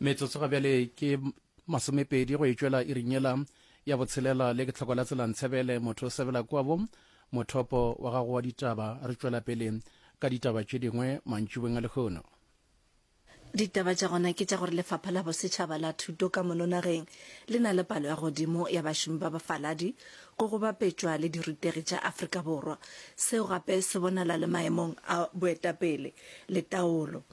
metsotso ga bjale ke masomepedi go etšwela irinyela ya botshelela le ke tlhoko la tselantshebele motho o sebela kwabo mothopo wa gago wa ditaba re tšwela pele ka ditaba tše dingwe mantšubeng a lekgono Ditaba tša gona ke tša gore lefapha la bosetšhaba la thuto ka mono nageng le na le palo ya godimo ya bašomi ba bafaladi go go bapetšwa le dirutegi tša Afrika Borwa. Seo gape se bonala le maemong a boetapele le taolo.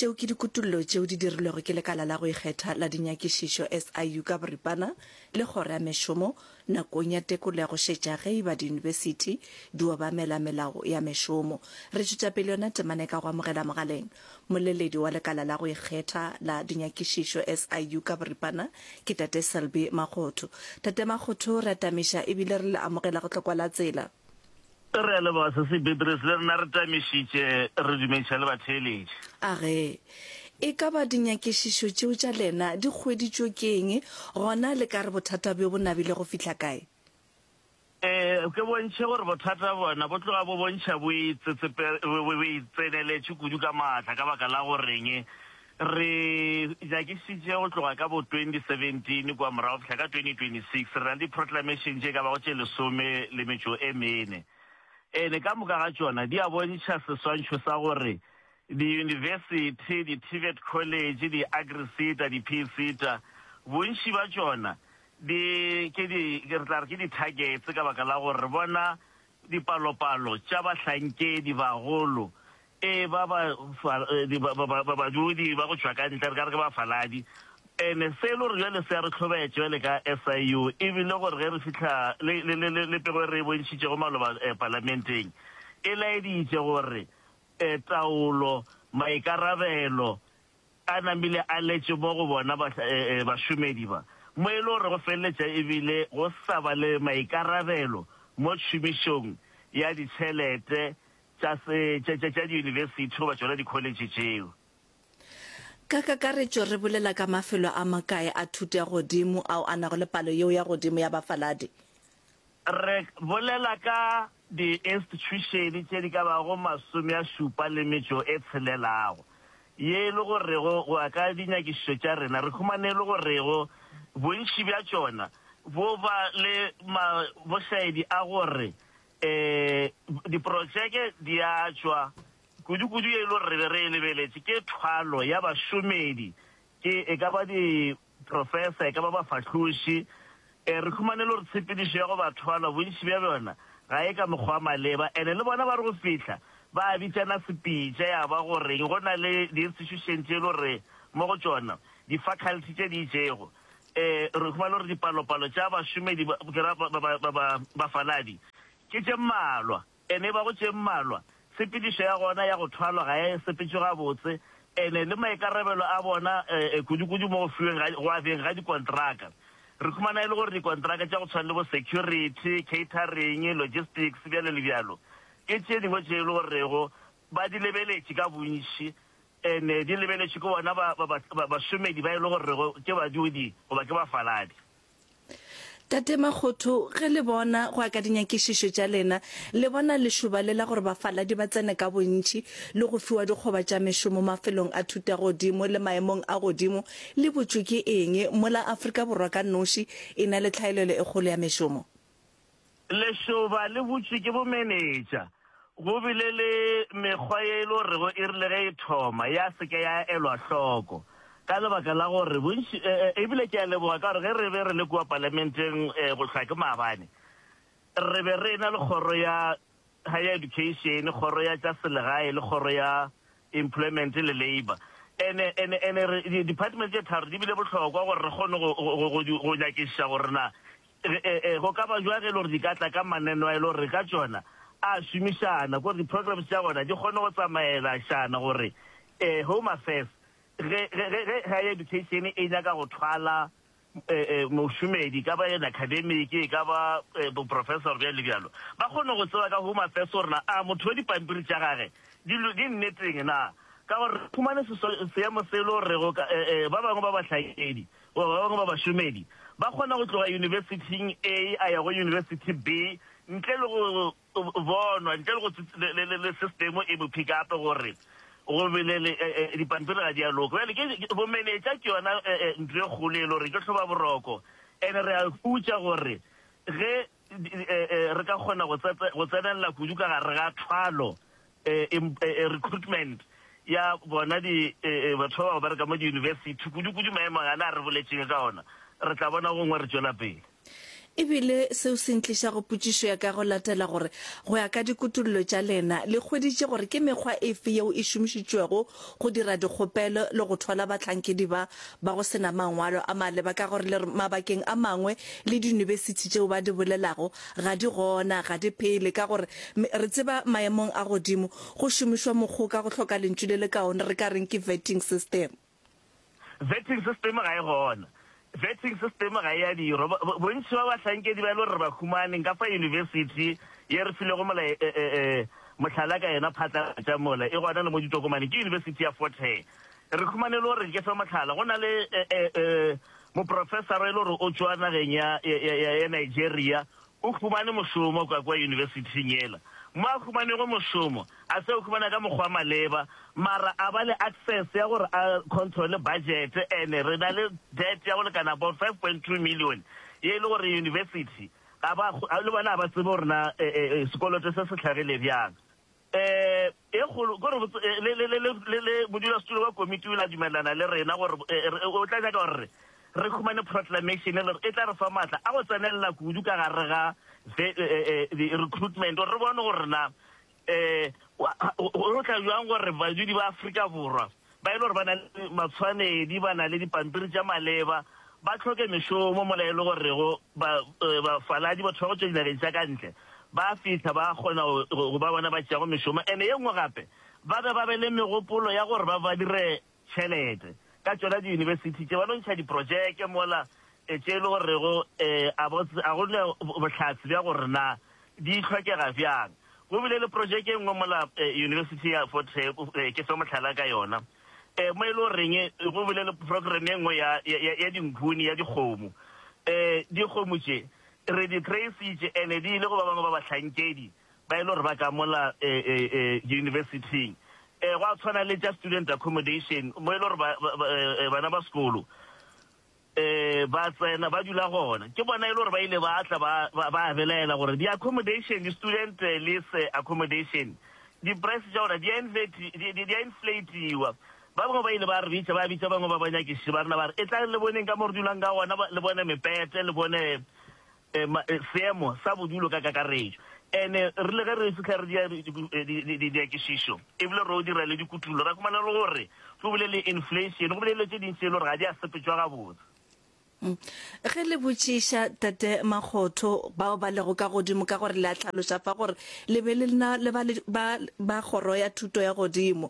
tšeo ke dikutullo tšeo di dirilwego ke lekala la go ikgetha la dinyakišišo SIU ka boripana le kgoro ya mešomo nakong ya tekolo ya go šetša ge e ba diyunibesithi di obamela melao ya mešomo. Re tšwetša pele yona temane ka go amogela mogaleng moleledi wa lekala la go ikgetha la dinyakišišo SIU ka boripana ke Tate Selby Makgotho. Tate Makgotho, re atamiša ebile re le amogela go tlokwa la tsela. Re a leboga Sesi Beatrice, le rena re tamišitše, re dumediša le batheeletši. A re, E ka ba dinyakišišo tšeo tša lena di hweditšwe ke eng, gona le ka re bothata bjo bo nabile go fihla kae? Ee, ke bontšhe gore bothata bona bo tloga bo bontšha bo itseneletše kudu ka maatla ka baka la go reng? Re nyakišitše go tloga ka bo 2017 kua morago go fihla ka 2026, re na le di-proclamation tše e ka bago tše lesome le metšo e mene. Ene ka moka ga tšona di a bontšha seswantšho sa gore diyunibesithi, di-TVET college, di-agri-seta, di-PSETA, bontši bja tšona di ke di, re tla re ke di-targets ka baka la gore re bona dipalopalo tša bahlankedi bagolo Ee, ba ba, fa, di, ba, ba, ba, ba badudi ba go tšwa ka ntle, re ka re ke bafaladi. Ene selo re bjale se a re hlobaetša bjale ka SIU, e bile gore ge re fihla, le, le, le, le, le pego e re e bontšhitšego maloba eh, Palamenteng, e laeditše gore eh, taolo, maikarabelo a namile a letše mo go bona ba, eh, eh, bašomedi ba, mo e le gore go feleletša e bile go sa ba le maikarabelo mo tšhomišong ya ditšhelete tša se, tša, tša, tša diyunibesithi goba tšona dikholetšhe tšeo. Ka kakaretšo re bolela ka mafelo a makae a thuto ya godimo ao a nago le palo yeo ya godimo ya bafaladi? Re bolela ka diinstitšhušene tše di ka bago masome a šupa le metšo e tshelelago. Ye e le gorego, go ya ka dinyakišišo tša rena, re humane e le gorego bontši bja tšona bo ba le ma, bošaedi a gore Ee, diprotšeke di a tšwa. Kudu-kudu ye e lo re be re e lebeletše ke thwalo ya bašomedi, ke e ka ba diprofesa, e ka ba bafahloši. Ee, re humane e lo re tshepedišo ya go ba thwalo bontši bja bjona ga e ka mokgwa wa maleba. Ene le bona ba re go fihla ba bitšana sepitša ya ba go reng go na le diinstitušene tše e lo re mo go tšona difaculty tše di itšego re huma le gore dipalopalo tša bašomedi ba bafaladi ke tše mmalwa, ene e ba go tše mmalwa, tshepedišo ya gona ya go thwalwa ga e sepetšwe gabotse, ene le maikarabelo a bona kudukudu mo go fiweng go abjeng ga dikontraka. Re humana e le gore dikontraka tša go tshwana le bo security, catering, logistics, bjalo le bjalo, ke tše dingwe tše e le gorego ba di lebeletše ka bontši, Ene di lebeletšwe ke bona ba, ba, ba, bašomedi ba e le gorego ke badudi goba ke bafaladi. Tate Makgotho, ge le bona go ya ka dinyakišišo tša lena, le bona lešoba le la gore bafaladi ba tsene ka bontši le go fiwa dikgoba tša mešomo mafelong a thutagodimo le maemong a godimo le butšwe ke eng? Mola Afrika Borwa ka noši e na le tlhaelelo e kgolo ya mešomo. Lešoba le butšwe ke bomenetša. Go bile le mekgwa ye e le gorego e rile ge e thoma ya se ke ya elwa hloko ka lebaka la gore bontši, e bile ke a leboga ka gore ge re be re le kua Palamenteng go hlwa ke maabane re be re ena le kgoro ya Higher Education, kgoro ya tša selegae le kgoro ya Employment le Labour. Ene, ene, ene re, di-department tše tharo di bile bohlokwa gore re kgone go, go, go, go nyakišiša gore na Ee, go ka ba bjang ge e le gore di ka tla ka maneno a e le gore re ka tšona a šomišana gore di-programs tša gona di kgone go tsamaelašana gore um Home Affairs ge Higher Education e nyaka go thwala um mošomedi ka ba yena academic e ka ba boprofessor bjalo le bjalo ba kgone go tseba ka Home Affairs gore na a motho wa dipampiri tša gage di nneteng na ka gore fumane seemo se e le gore ba bangwe ba bahlakedi Goba ba bangwe ba bašomedi ba kgona go tloga yunibesithing A a ya go yunibesithi B ntle le go bonwa, ntle le go le sistemo e bophi gape gore go belele dipampiri ga di a loka. Bjale ke bomenetša ke yona ntlo e kgolo e le gore ke hloba boroko. And re a hutša gore ge re ka kgona go tsenelela kudu ka gare ga thwalo recruitment ya bona di batho ba ba bereka mo diyunibesithi kudu-kudu maemo ana a re boletšeng ka ona, re tla bona gongwe re tšwela pele. E bile seo se ntliša go potšišo ya ka go latela gore, go ya ka dikutollo tša lena, le hweditše gore ke mekgwa efe yeo e šomišitšwego go dira dikgopelo le go thola bahlankedi ba ba go se na mangwalo a maleba ka gore le re mabakeng a mangwe le diyunibesithi tšeo ba di bolelago Ga di gona, ga di phele, ka gore re tseba maemong a godimo go šomišwa mokgoka go hloka lentšu le le kaone, re ka reng ke vetting system. Vetting system ga e gona. Vetting system ga e a dirwa. Bontši ba bahlankedi ba e le gore re ba humane nka fa yunibesithi ye re filego mohlala ka yona phatlalatša mola, e gona le mo ditokomaneng, ke yunibesithi ya Fort Hare. Re humane e le gore ke fe mohlala, go na le moprofesara e le gore o tšwa nageng ya Nigeria, o humane mošomo kwa kwa yunibesithing yela. Mo a humanego mošomo, a se o humana ka mokgwa wa maleba, mara a ba le access ya gore a controle budget, and re na le debt ya go lekana about five point two million ye e le gore yunibesithi le bona ga ba tsebe gore na sekoloto se se hlagile bjang. e kgolo ke gore le modulasetulo wa komiti o ile a dumelelana le rena gore o tla nyaka gore re humane proclamation e le gore e tla re fa maatla a go tsenelela kudu ka gare ga recruitment gore re bone gore na go tla jwang gore badudi ba Afrika Borwa ba e le gore ba na le matshwanedi, ba na le dipampiri tša maleba, ba hloke mešomo, mola e le gorego ba, uh, bafaladi, batho ba go tšwa dinageng tša ka ntle, ba fihla ba kgona go, go ba bona ba tšeago mešomo. Ene ye nngwe gape, ba be ba be le megopolo ya gore ba ba dire tšhelete ka tšona diyunibesithi tše, ba no ntšha diprotšeke mola Tše e le gorego e a bo a go ne bohlatse bja gore na di hlokega bjang. Go bile le projeke e nngwe mola University ya Fort Hare, ke fe mohlala ka yona, mo e le goreng go bile le program e nngwe ya ya dinkhuni ya dikgomo. Dikgomo tše re di trace-itše and di ile go ba bangwe ba bahlankedi ba e le gore ba ka mola University-ing. Gwa tshwana le tša student accommodation mo e le gore bana ba sekolo, Ee, ba tsena, ba dula gona. Ke bona e le gore ba ile ba tla ba, ba, ba belaela gore di-accommodation, di-student eh, lease eh, accommodation, di-price tša gona di a inflati- di- di- di a inflatiwa. Ba bangwe ba ile ba re bitša, ba bitša bangwe ba banyakiši ba rena ba re, e tlang le boneng ka mo re dulang ka gona, ba- le bone mepete, le bone seemo sa bodulo ka kakaretšo. And rile ge re fihla re dira dinyakišišo e bile ro dira le dikutullo, ra humana e le gore go bile le inflation, go bile le dilo tše dintši tše e le gore ga di a sepetšwa gabotse. Ge le botšiša Tate Makgotho bao ba lego ka godimo ka gore le a hlaloša fa gore le be le na le ba ba Kgoro ya Thuto ya Godimo,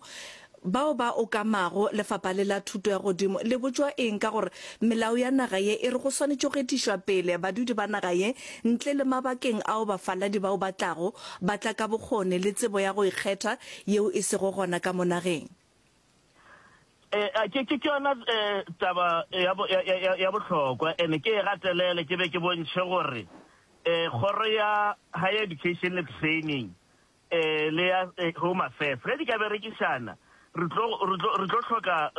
Bao ba okamago lefapha le la thuto ya godimo le botšwa eng ka gore melao ya naga ye e re go swanetše go etišwa pele badudi ba naga ye ntle le mabakeng ao bafaladi bao ba tlago ba tla ka bokgone le tsebo ya go ikgetha yeo e sego gona ka mo nageng? Ea, ke, ke, ke yona e, taba ya, bo, ya, ya, ya bohlokwa, ene ke e gatelele ke be ke bontšhe gore e, kgoro ya Higher Education le Training le ya Home Affairs. Ge di ka berekišana, re tlo, re tlo, re tlo hloka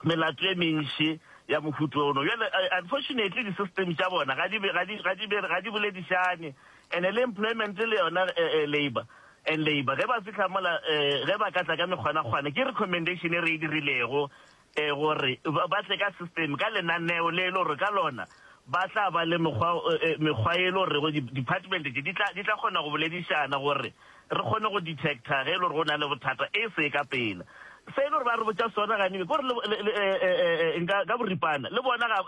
melato e mentši ya mohuta ono. Bjale, unfortunately, di-system tša bona ga di, ga di, ga di, ga di boledišane. And-e le employment le yona, labour and labour, ge ba fihla mola, ge ba ka tla ka mekgwanakgwana, ke recommendation e re e dirilego, e gore ba tle ka system, ka lenaneo le e le gore ka lona ba tla ba le mekgwa mekgwa e le gorego di department tše di tla di tla kgona go boledišana gore re kgone go detector ge e le gore go na le bothata e se ka pela. Se e le gore ba re botša sona gane ke gore le nka ka boripana le bona ga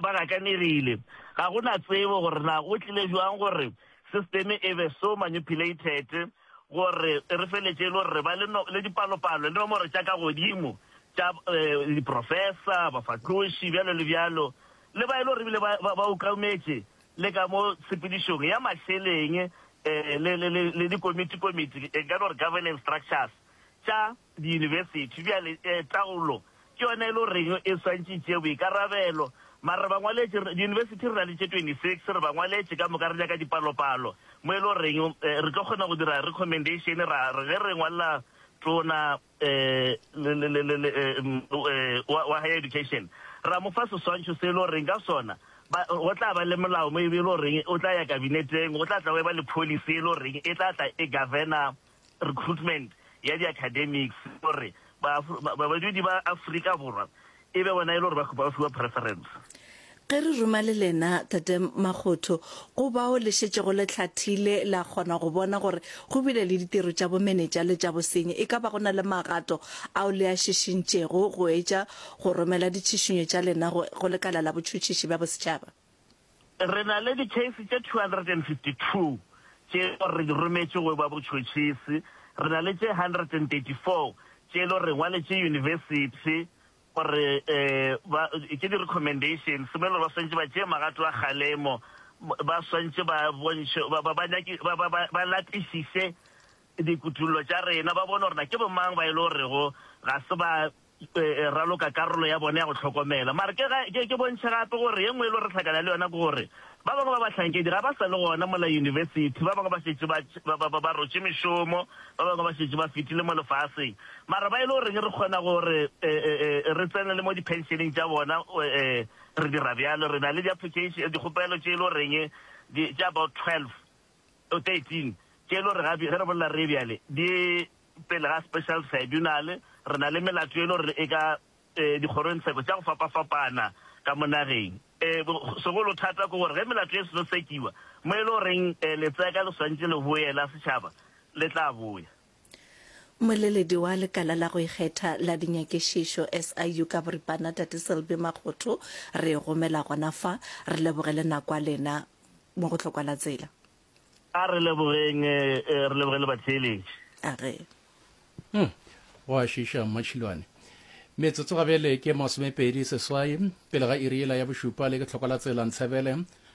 ba gakanegile ga go na tsebo gore na go tlile jwang gore Sisteme e be so manipulated gore e re feletše e le gore re ba le, no, le dipalopalo le nomoro tša ka godimo tša eh, diprofesa, bafahloši, bjalo le bjalo, le ba e le gore ebile ba, ba, ba ukaumetše le ka mo tshepedišong ya mašeleng eh, le, le, le, le dikomiti-komiti, e ka no re governance structures tša diyunibesithi bjale taolo ke yona e le goreng e swantše e tšee boikarabelo. Mara re bangwaletši, diyunibesithi re na le tše 26, re bangwaletši ka moka re nyaka dipalopalo mo e le goreng re tlo kgona go dira recommendation ra re ge re ngwalela tona wa higher education ra mo fa seswantšho se e le goreng ka sona go tla ba le molao mo e le goreng o tla ya kabineteng, go tla tla go eba le policy e le goreng e tla tla e governa recruitment ya di academics gore badudi ba Afrika Borwa e be bona e le gore ba khupa ba fiwa preference. Ge re ruma le lena Tate Makgotho, go bao le šetšego le hlathile la kgona go bona gore go bile le ditiro tša bomenetša le tša bosenyi, e ka ba go na le magato ao le a šišintšego go etša go romela ditšhišinyo tša lena go Lekala la Botšhotšhiši bja Bosetšhaba? Re na le dikheisi tše 252 tše e lego re di rometše go yo ba botšhotšhisi, re na le tše 134 tše e lego re ngwaletše yunibesithi gore ba ke di-recommendations mo e lego ba swanetše ba tšee magato a kgalemo, ba swanetše ba bontšhe, ba, ba, ba, nyaki, ba, ba, ba, ba lapišiše dikutollo tša rena, ba bone gore na ke bomang ba e lego gorego ga se ba raloka karolo ya bone ya go hlokomela. Mara ke ga ke, ke bontšhe gape gore ye nngwe e lo re tlhakana le yona ke gore ba bangwe ba bahlankedi ga ba sa le gona mola yunibesithi, ba bangwe ba šetše ba, ba, ba, ba, ba rotše mešomo, ba bangwe ba šetše ba fetile mo lefaseng. Mara ba e le goreng re kgona gore e, e, e, re tsene le mo diphenšeneng tša bona, e, re dira bjalo. Re na le di-application, dikgopelo tše e le goreng di, tše about 12 O 13, Ke e le gore ge re bolela re bjale di pele ga special tribunal, re na le melato e le gore e ka dikgorongtsheko tša go fapafapana ka mo nageng. Segolo thata ke gore ge melato e seno sekiwa, mo e le goreng letseka le swanetše le boela setšhaba le tla boya. Mmoleledi wa lekala la go ikgetha la dinyakišišo SIU ka boripana Tate Selby Makgotho re gomela gona fa, re leboge le nako ya lena mo go Hlokwala Tsela. A re lebogeng, re leboge le batheeletši. A re. Hum, go a šiša Mma Tšhilwane. Metsotso ga bjale ke masomepedi seswai pele ga iri yela ya bošupa le ke Hlokwala Tsela Ntshebele